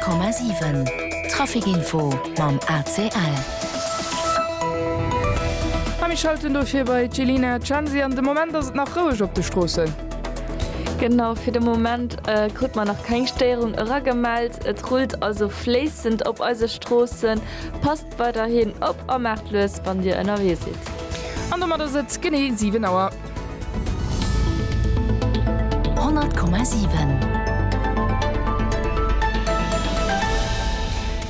100,7 Trafic Info mam ACL. A mir schalten dofir bei d'Jelina Censi an. De Moment ass et nach roueg op de Stroossen. Genau, fir de Moment krute mer nach keng Stéierung eragemellt. Et rullt also fléissend op eise Stroossen. Passt weiderhin op a maacht lues, wann Dir ënnerwee sidd. An domat ass et genee 7 Auer.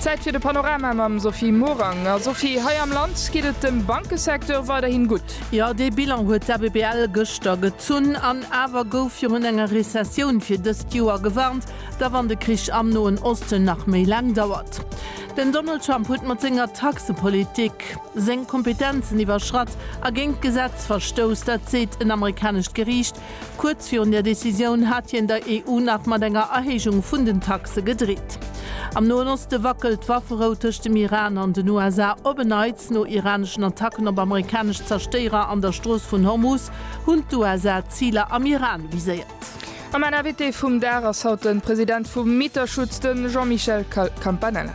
Zäit fir de Panorama mam Sophie Morang. A Sophie, hei am Land geet et dem Bankesecteur weiderhin gutt. Jo, dee Bilan huet d'ABBL gëschter gezunn. An awer gouf virun enger Rezessioun fir dëst Joer gewarnt, da wann de Krich am Noen Osten nach méi laang dauert. Den Donald Trump huet mat senger Taxepolitik. seng Kompetenzen iwwerschratt a géint d'Gesetz verstouss, dat seet en amerikanescht Geriicht. Kuerz virun där Decisioun hat hien der EU nach mat enger Erhéijung vun den Taxe gedreet. Am Noen Oste wackelt d'Wafferou tëscht dem Iran an den USA op en Neits. No iraneschen Attacken op amerikanesch Zerstéierer an der Strooss vun Hormuz hunn d'USA Ziler am Iran viséiert. A mäin Invité vum Dag ass haut den President vum Mieterschutz, den Jean-Michel Campanella.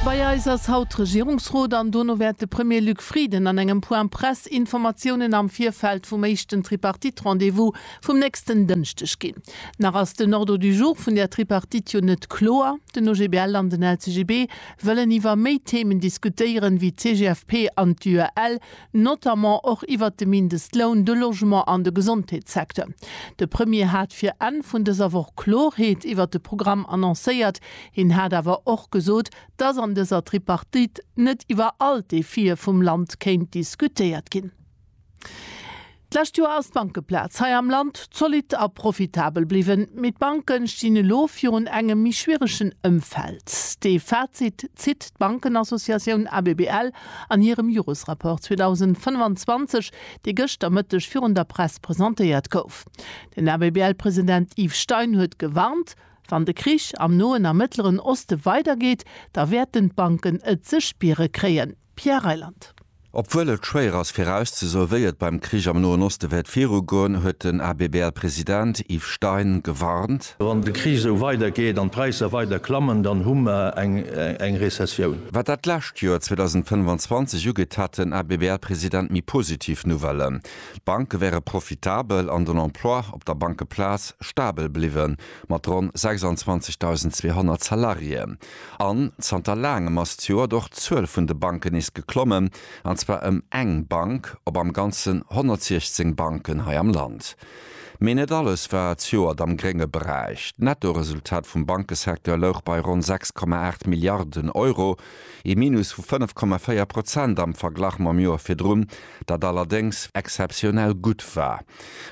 Bei eis ass haut Regierungsrot an dono wäert de Premier Luc Frieden an engem Point Presse Informatiounen am Virfeld vum éischten Tripartite-Rendez-vous vum nächsten Dënschdeg ginn. Nach ass den Ordre du jour vun där Tripartite jo net kloer. Den OGBL an den LCGB wëllen iwwer méi Themen diskutéieren, wéi d'CGFP an d'UEL, notamment och iwwert de Mindestloun, de Logement an de Gesondheetssecteur. De Premier hat fir Enn vun dëser Woch Klorheet iwwert de Programm annoncéiert. Hien hat awer och gesot, dass an dëser Tripartite net iwwer all d'Defie vum Land kéint diskutéiert ginn. D'lescht Joer ass d'Bankeplaz hei am Land zolidd a profitabel bliwwen, mee d'Banken stinn elo virun engem méi schwieregen Ëmfeld. Dee Fazit zitt d'Bankenassociatioun ABBL an hirem Joresrapport 2025, dee gëscht am Mëtteg virun der Press presentéiert gouf. Den ABBL-President Yves Stein huet gewarnt, Wann de Krich am Noen a Mëttleren Oste weidergeet, da wäerten d'Banken et ze spiere kréien. Pierre Reyland. Obwuel et schwéier ass virauszesoe wéi et beim Krich am Noen Oste wäert virugoen, huet den ABBL-President Yves Stein gewarnt. Wann de Krich esou weider geet an d'Präisser weider klammen, dann hu mer eng Rezessioun. Wat dat lescht Joer 2025 ugeet, hat den ABBL-President méi positiv Nouvellen. D'Banke wäre profitabel an den Emploi op der Bankeplaz stabel bliwwen, mat ronn 26.200 Salariéen. An zanter laangem ass zejoert och d'Zuel vun de Banken nees geklommen, an zwar ëm eng Bank op am Ganzen 116 Banken hei am Land. Mee net alles war zejoert am grénge Beräich. D'Nettoresultat vum Bankesecteur louch bei ronn 6,8 Milliarden Euro, ee Minus vu 5,4 Prozent am Verglach mam Joer virdrun, dat allerdéngs exzeptionell gutt war.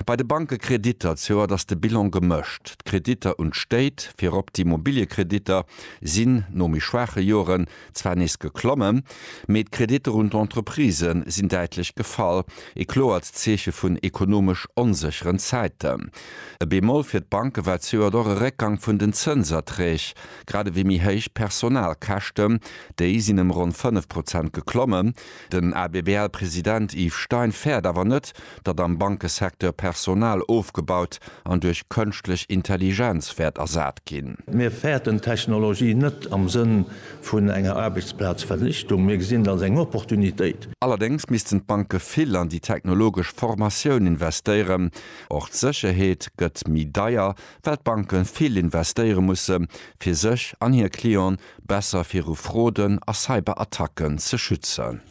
Bei de Bankekreditter d'Joert ass de Bilan gemëscht. D'Kreditter un d'Stéit, virop d'Immobiliekreditter, sinn no méi schwaache Joren zwar nees geklommen, mee d'Kreditter un d'Entreprisë sinn däitlech gefall, e kloert Zeeche vun ekonomesch onsécheren Zäiten. E Bémol fir d'Banke war d'Joert och e Réckgang vun den Zënserträg, grad ewéi méi héich Personalkäschten, déi sinn ëm ronn 5 Prozent geklommen. Den ABBL-President Yves Stein fäert awer net, datt am Bankesecteur Personal ofgebaut an duerch Kënschtlech Intelligenz wäert ersat ginn. Mir fäerten d'Technologie net am Sënn vun enger Aarbechtsplazvernichtung, mir gesinn et als eng Opportunitéit. Allerdéngs missten d'Banke vill an déi technologesch Formatioun investéieren. Och d'Sécherheet gëtt méi deier, well d'Banke vill investéiere musse fir sech an hir Clienten besser viru Froden a Cyberattacken ze schützen.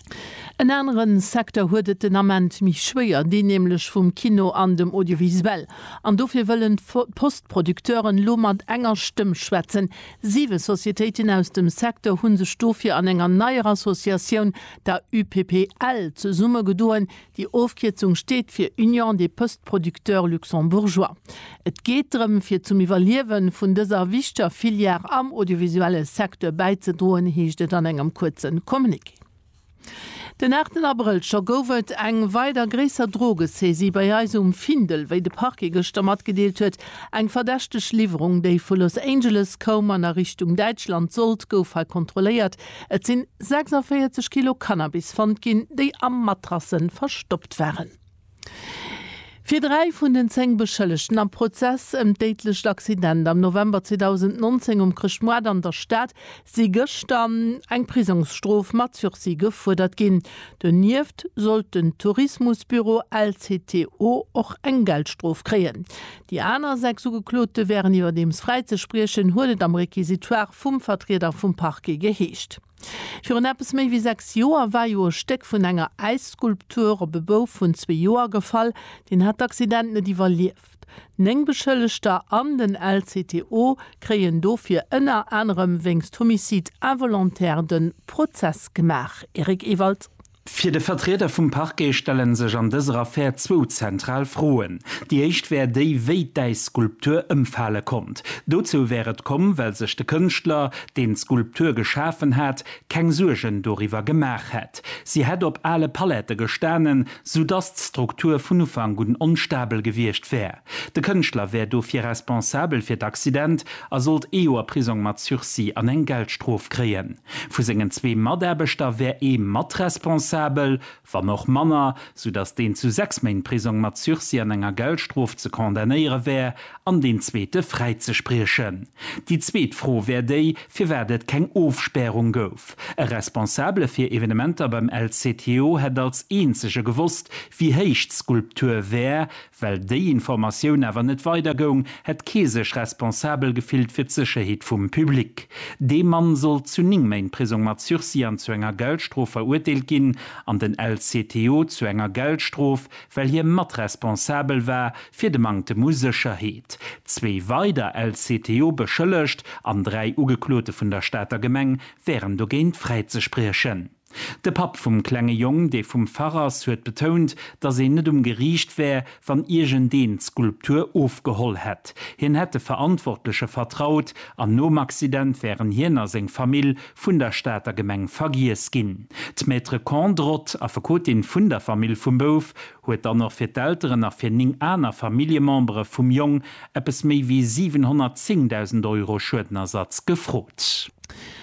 En anere Secteur huet et den Ament méi schwéier, deen nämlech vum Kino an dem Audiovisuel. An dofir wëllen d'Post-Producteuren elo mat enger Stëmm schwätzen. Siwe Societéiten aus dem Secteur hu sech dofir an enger neier Associatioun, der UPPL, zesummegedoen, Déi Ofkierzung steet fir Union des Postes Producteurs Luxembourgeois. Et geet drëm, fir zum Iwwerliewe vun dëser wichteger Filière am audiovisuelle Secteur bäizedroen, heescht et an engem kuerze Communiqué. Den aachten Abrëll scho gouf et eng weider gréisser Drogesaisie bei eis um Findel. Wéi de Parquet gëschter matgedeelt huet, eng verdächteg Liwwerung, déi vu Los Angeles koum an a Richtung Däitschland sollt, gouf hei kontrolléiert, Et sinn 46 Kilo Cannabis fonnt ginn, déi a Matrassen verstoppt waren. Fir dräi vun den zéng Beschëllegten am Prozess ëm d'déidlecht Accident am November 2019 um Chrëschtmoart an der Stad si gëschter eng Prisongsstrof mat Sursis gefuerdert ginn. Donieft sollt den Tourismusbüro LCTO och eng Geldstrof kréien. Déi aner sechs Ugeklote wären iwwerdeems fräizespriechen, huet et am Requisitoire vum Vertrieder vum Parquet geheescht. Virun eppes méi wéi sechs Joer war jo e Stéck vun enger Äisskulptur op e Bouf vun zwee Joer gefall. Deen hat d'Accident net iwwerlieft. Néng Beschëllegter an den LCTO kréien dofir ënner anerem wéinst Homicide involontaire de Prozess gemaach. Eric Ewald. Fir de Vertrieder vum Parquet stelle sech an dëser Affär zwou zentral Froen. Déi éischt wär déi, wéi d'Äisskulptur ëmfale konnt. Dozou wär et komm, well sech de Kënschtler, deen d'Skulptur geschafen hat, keng Suergen doriwwer gemaach hätt. Si hätt op ale Palette gestanen, soudass d'Struktur vun Ufank un onstabel gewiescht wär. De Kënschtler wär dofir responsabel fir d'Accident a sollt ee Joer Prisong mat Sursis an eng Geldstrof kréien. Vu sengen zwee Mataarbechter wär ee mat responsabel, wann och manner, soudatt deen zu sechs Méint Prisong mat Sursis an enger Geldstrof ze condamnéiere wär an deen zweete fräizespriechen. Déi zweet Fro wär déi, firwat et keng Ofspärung gouf. E Responsabele fir Evenementer beim LCTO hätt als eenzege gewosst, wéi héich d'Skulptur wär, Well déi Informatioun awer net weider goung, hätt kee sech responsabel gefillt fir d'Sécherheet vum Public. Dee Mann sollt zu 9 Méint Prisong mat Sursis an zu enger Geldstrof verurteelt ginn an den LCTO zu enger Geldstrof, well hie matresponsabel war fir de Manktem u Sécherheet. Zwee weider LCTO-Beschëllegt an dräi Ugeklote vun der Stater Gemeng wären dogéint fräizespriechen. De Papp vum klenge Jong, dee vum Fach ass, huet betount, datt een net um Geriicht wär, wann iergendeen d'Skulptur ofgeholl hätt. Hien hätt de Verantwortleche vertraut an nom Accident wären hien a seng Famill vun der Stater Gemeng vergiess ginn. D'Maître Kondrot, Affekotin vun der Famill vum Bouf, huet dann och fir d'Elteren a fir néng aner Familljemembere vum Jong eppes méi wéi 710.000 Euro Schuedenersatz gefrot.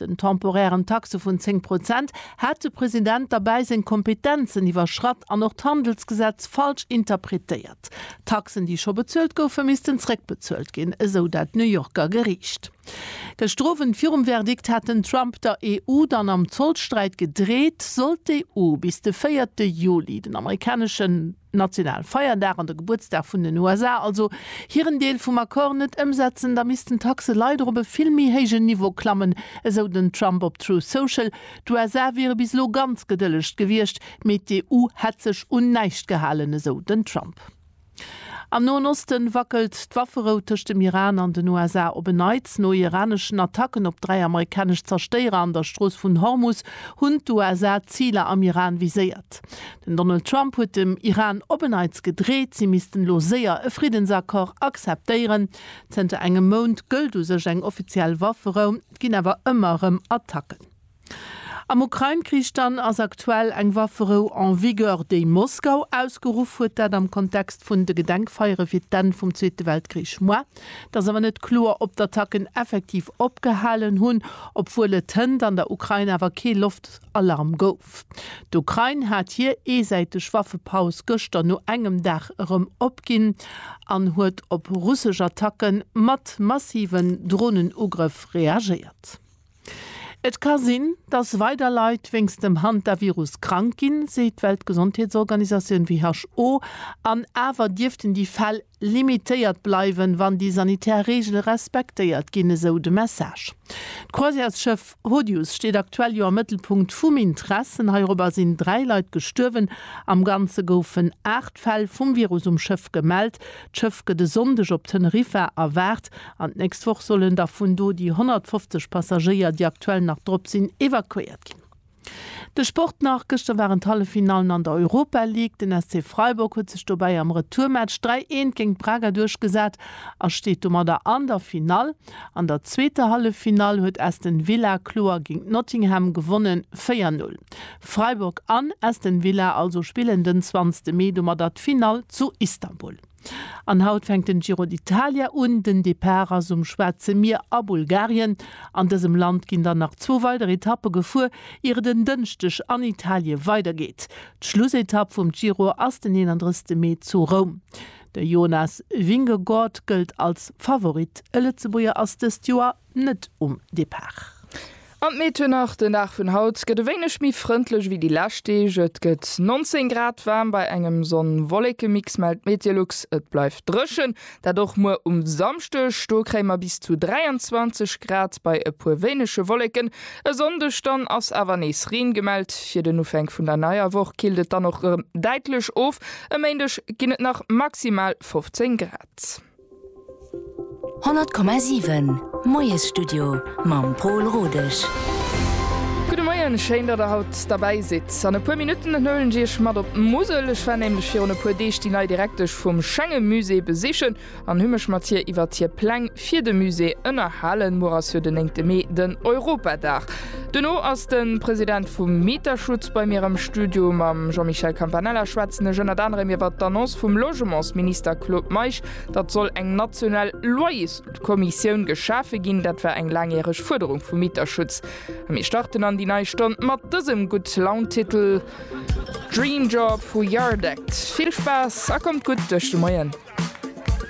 den temporären Taxe vun 10 Prozent, hat de President derbäi seng Kompetenzen iwwerschratt an och d'Handelsgesetz falsch interpretéiert. Taxen, déi scho bezuelt goufen, missten zréckbezuelt ginn, esou dat New Yorker Geriicht. Gëschter Owend virum Verdikt hat den Trump der EU dann am Zollsträit gedreet, sollt d'EU bis de véierte Juli den amerikaneschen. nationalen Feierdag an de Gebuertsdag vun den USA, also hiren Deel vum Accord net ëmsetzen, da missten d'Taxe leider op e vill méi héijen Niveau klammen, esou den Trump op Truth Social. D'USA wiere bis elo ganz gedëllegt gewiescht, mee d'EU hätt sech un näischt gehalen, esou den Trump. Am Noen Osten wackelt d'Wafferou tëscht dem Iran an den USA op en Neits. No iraneschen Attacken op dräi amerikanesch Zerstéierer an der Strooss vun Hormus hunn d'USA Ziler am Iran viséiert. Den Donald Trump huet dem Iran op en Neits gedreet, si missten elo séier e Friddensaccord acceptéieren. Zënter engem Mount gëllt u sech eng offiziell Wafferou, et ginn awer ëmmer erëm Attacken. Am Ukrain-Krich dann ass aktuell eng Wafferou en vigueur, déi Moskau ausgeruff huet, dat am Kontext vun de Gedenkfeiere fir d'Enn vum Zweete Weltkrich. Moi, et ass awer net kloer, ob d'Attacken effektiv opgehalen hunn, obwuel et hënt an der Ukrain awer kee Loft. Alarm gouf. D'Ukrain hat hir eesäiteg Waffepaus gëschter no engem Dag erëm opginn an huet op russesch Attacke mat massiven Dronenugrëff reagéiert. Et ka sinn, datt weider Leit wéinst dem Hantavirus krank ginn, seet d'Weltgesondheetsorganisatioun, WHO, an awer dierften déi Fäll limitéiert bleiwen, wann déi sanitär Reegele respektéiert ginn, esou de Message. D'Croisièresschëff Rodius steet aktuell jo am Mëttelpunkt vum Intressen. Heirobber sinn dräi Leit gestuerwen. Am Ganze goufen aacht Fäll vum Virus um Schëff gemellt. D'Schëff gëtt e Sonndeg op Teneriffa erwaart an d'nächst Woch sollen da vun do déi 150 Passagéier, déi aktuell nach drop sinn, evakuéiert ginn. De Sport nach, Gëschter waren d'Halleffinallen an der Europa League. Den SC Freiburg huet sech dobäi am Retourmatch 3, 1 géint Braga duerchgesat a steet domadder an der Finall. An der zweeter Halleffinall huet Aston Villa kloer géint Nottingham gewonnen, 4, 0. Freiburg an Aston Villa also spillen den 20 Mee domadder d'Finall zu Istanbul. An haut fänkt den Giro d'Italia un. Den Depart ass um Schwaarze Mier a Bulgarien. An dësem Land ginn dann nach zwou weider Etappe gefuer, ier et en Dënschdeg an Italie weidergeet. D'Schlussetapp vum Giro ass den 31 Mee zu Roum. De Jonas Vingegaard gëllt als Favorit. E Lëtzebuerger ass dëst Joer net um Depart. An d'Meteou nach, Den Dag vun haut gëtt e wéineg méi frëndlech wéi déi lescht Deeg. Et gëtt 19 Grad, waarm bei engem Sonn-Wolleke-Mix, mellt d'Meteolux. Et bleift dréchen, dat och muer um Samschdeg. Do kréie mer bis zu 23 Grad bei e puer wéinege Wolleken. E Sonndeg dann ass awer nees Reen gemellt. Fir den Ufänk vun der neier Woch killt et dann och erëm däitlech of. E Méindeg ginn et nach maximal 15 Grad. 100,7 Moiesstudio mam Pol Rodesch. Gudde Moien, schéin datt der haut derbäi sidd. An e puer Minutten huelen ech iech mat op d'Musel. Ech war nämlech virun e puer Deeg déi nei Direktesch vum Schengemusée besichen an hu mech mat hir iwwert hir Pläng fir de Musée ënnerhalen. Muer ass jo den 9 Mee, den Europadag. Duerno ass de President vum Mieterschutz bei mir am Studio. Mam Jean-Michel Campanella schwätzen ech ënnert anerem iwwert d'Annonce vum Logementsminister Claude Meisch, datt soll eng national Loyerskommissioun geschafe ginn. Dat war eng laangjäreg Fuerderung vum Mieterschutz. A mir starten an déi nei Stonn mat dësem Gutt-Laun-Titel, Dream Job vu Yardekt. Vill Spaass a kommt gutt duerch de Moien!